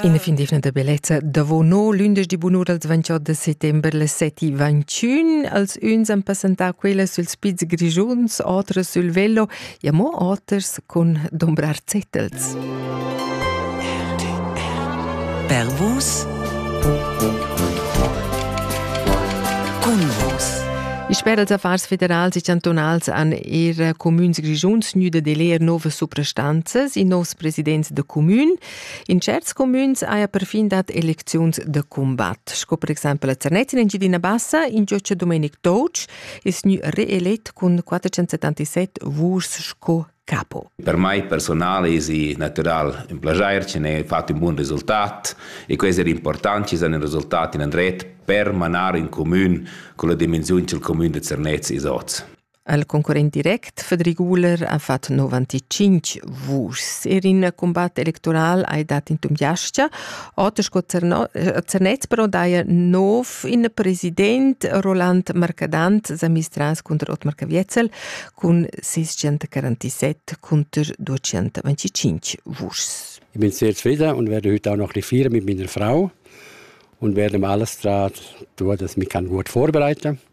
In definitiv da bellezza davo no lündeschdi bunur als 28 de settember le seti 21 als uns han passantà quella süls piz grigiuns, otras sul velo e mo oters cun dombrar zettels. Pervus Cun vos I sper als affars federals e chantunals han er cumüns grischuns gnüda de leer novas suprastanzas in nos presidents da cumün. In certs cumüns haja perfin dat elecziuns da cumbat, sco per exempel a Zernez in Engiadina Bassa, in gioccia Domenic Doc ist gnü reelett cun 477 vuschs sco capo. Per mai personale è natural un piacere, ci ne fatto un buon risultat e questo è importante, ci sono risultati in andret per manare un comune con la dimensione del comune di Zernez e Soz. El concurrent direct Federic Guler ha fatg 95 vuschs. Er in combat electoral ha dat in tumgiastia. Otto Zernez però daja nov in president Roland Marcadant sa mistras cunter Otmar Caviezel cun 647 cunter 225 vuschs. Ich bin sehr zufrieden und werde heute auch noch ein feiern mit meiner Frau und werde alles daran tun, dass ich mich gut vorbereiten kann.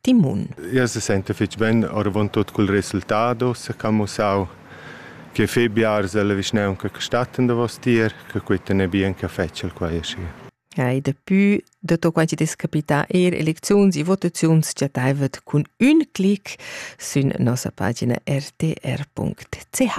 timun. Ja se sente fitg ben oravontut cul resultado s'ha camussau che fe biars dalla vischnaunca che statten davos tier che quitten e bien che fetschel quai aschi. Ja, e daplü dato quai chi des capità eir elecziuns e votaziuns chattaivet cun ün clic sün nossa pagina rtr.ch.